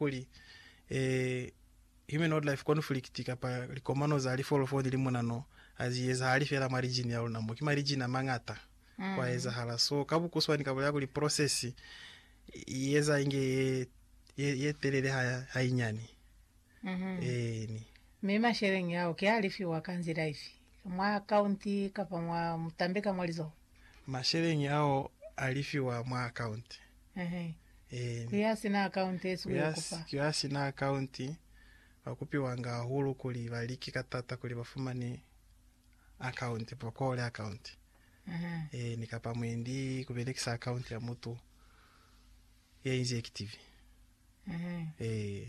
kuli, e, human-wildlife conflict kapa likomano za lifolofolo ni limunano ha zi ezahali fela mwa lijini ya luna mo, ki malijini a mañata mm. kwa ezahala. So ka bukuswani ka bolela kuli process i eza inge ye, ye, ye telele ha, ha inyani mm -hmm. eni mi masheleng yao ke a lifiwa ka nzila ifi mwa akaunti kapa mwa mutambe ka mwa lizoho? Masheleñi ao a lifiwa mwa akaunti. Eehi. Ku ya sina akaunti esi ku yo kupa. Ku ya sina akaunti ba kupiwanga hahulu kuli ba like ka tata kuli ba fumane akaunti, ba kole akaunti. Eehi, ni kapa mwendi ku belekisa akaunti ya mutu ya inzi ekitivi. Eehi.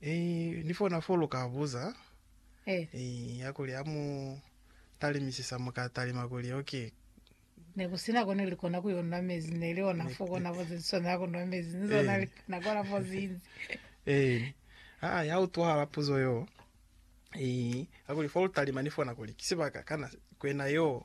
Eyi ni fona fo lu ka buza Eyi ya kuli ha mu talimisisa mu ka talima kuli ok. Ne ku sina ko ne li kona ku yo nwa mezi, ne li ona fo kona fo ze li swanela ku nwa mezi, ni zona li kona ku ola fo zinzi. Eyi aa ya utwahala puzo yo. Eyi ya kuli fo lu talima ni fona kuli ki sibaka kana kwena yo.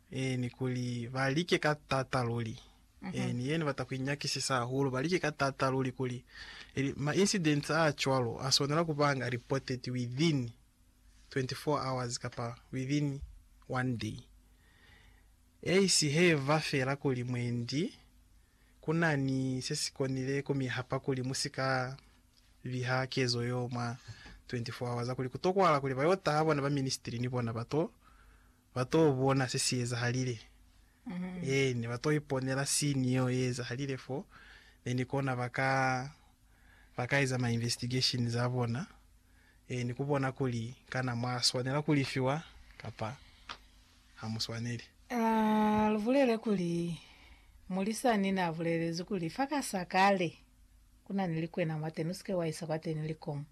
Ee, ni kuli, ba like ka taata luli. Ee, ni ye Ni bata ku inyakisisa hahulu. Ba like ka taata luli kuli, ili, ma incidents a cwalo a swanela ku banga reported within 24 hours kapa within one day. Eisi he ba fela kuli mwendi ku na ni se si konile ku mi hapa kuli mu si ka biha kezo yo mwa 24 hours, kuli ku tokwahala kuli ba yo taha bona ba ministry ni bona ba to Ba t'o bona se si ezahalile. Ee, ne ba t'o iponela sini yeo ye ezahalile fo, mi ni kona ba ka, ba ka eza ma investigation za bona, ee, ni ku bona kuli kana mwa swanela ku lifiwa kapa ha mu swaneli. A lu bulele kuli, Mulisani n'a bulelezi kuli, Fa ka sa kale, ku na ni likwena mwateni, u si ke wa isa kwateni likomo.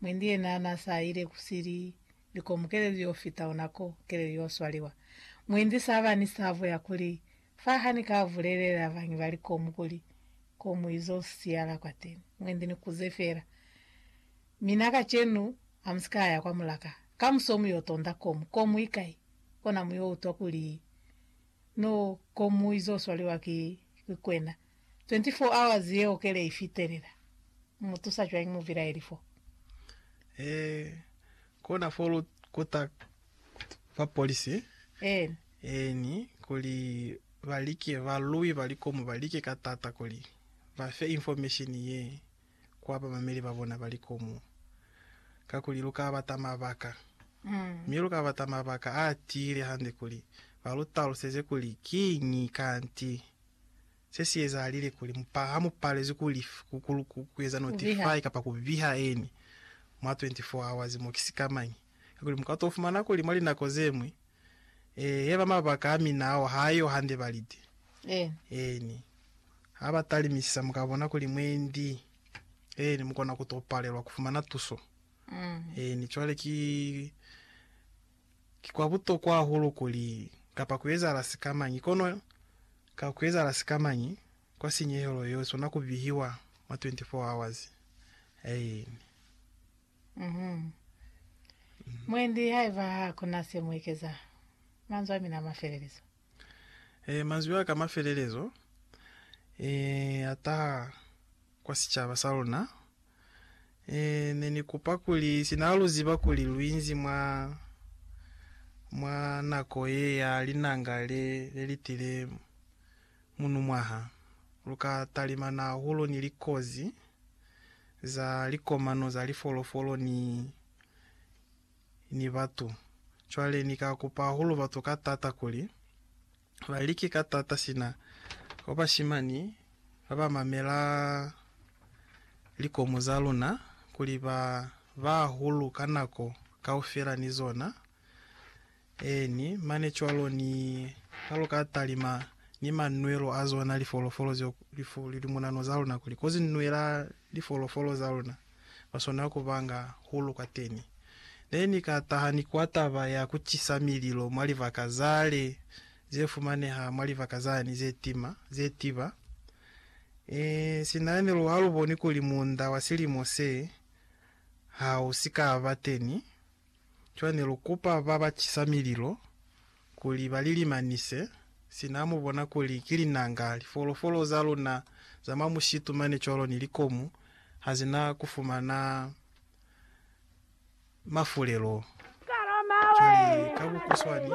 Mwendi yena n'a sa ile ku sili likomu keleli yo fita ona ko keleli yo swaliwa. Muindi sa ba ni sabo ya kuli, Fa ha ni ka bulelela bañwi ba likomu kuli, Ko mu izo siyala kwateni, mwendi ni kuze fela. Mina kacenu, ha mu si ka ya kwa mulaka. Kamuso mu yo tonda komu. Komu ikai? Kona mu yo utwa kuli no komu izo swaliwa ki kwena. 24 hours yeo kele i fitelela. Mu mu tusa cwañi mubilaeli fo? E kona fo lu kuta ba polisi Eeni. eeni kuli ba like ba lwi ba likomu ba like ka tata kuli ba fe information ye kwa bamameli ba bona ba likomu. Kakuli lu ka bata mabaka, Mm. mi lu ka bata mabaka a tiile hande kuli ba lu taluseze kuli kiñi kanti Se si ezahalile kuli mupa, ha mu palezwi ku lif, ku, ku, ku, ku eza notify kapa ku biha eni mwa 24 hours mo, ki sikamañi? Kakuli mu ka to fumana kuli mwa linako ze ñwi, ee, yaba mabaka a mina ao ha yo hande balite. Eeni. Ha ba talimisisa, mu ka bona kuli mwendi, eeni, mu kona ku to palelwa ku fumana tuso. Eeni, cwale ki. Ki kwa butokwa hahulu kuli, kapa ku ezahala sikamañi, kono ka ku ezahala sikamañi, kwa sinyehelo yeo i swana ku bihiwa mwa 24 hours. Aeni. Mhm. Mwendi, haiba ha ku na se mu ekeza, manzwi a mina a mafelelezo. Ee, manzwi a ka mafelelezo ee a taha kwa sicaba sa luna. Ee, ne ni kupa kuli, sina ha lu ziba kuli lu inzi mwa, mwa nako ye ya linanga le, le li tile munumwaha, lu ka talimana hahulu ni likozi za likomano za lifolofolo ni, ni batu. Cwale Ni ka kupa hahulu batu ka taata kuli ba like ka taata sina kwa bashimani ba ba mamela likomu za luna, kuli ba ba hahulu ka nako kaufela ni zona. Eeni, mane cwalo, ni ha lu ka talima ni manwelo a zona lifolofolo zeo, lifu, limunano za luna, kuli kozi nwela lifolofolo za luna. ba swana ku ba nga hulu kwateni. Ne ni ka taha ni kwa taba ya ku cisa mililo mwa libaka za le ze fumaneha mwa libaka zani ze tima, ze tiba. Ee, sina ne lu ha lu boni kuli muunda wa silimo se ha u si ka ba teni. Cwale ne lu kupa ba ba cisa mililo kuli ba li limanise, sina ha mu bona kuli ki linanga, lifolofolo za luna za mwa mushitu mane cwalo ni likomu ha zi na ku fumana mafulelo cwale ka bukuswani.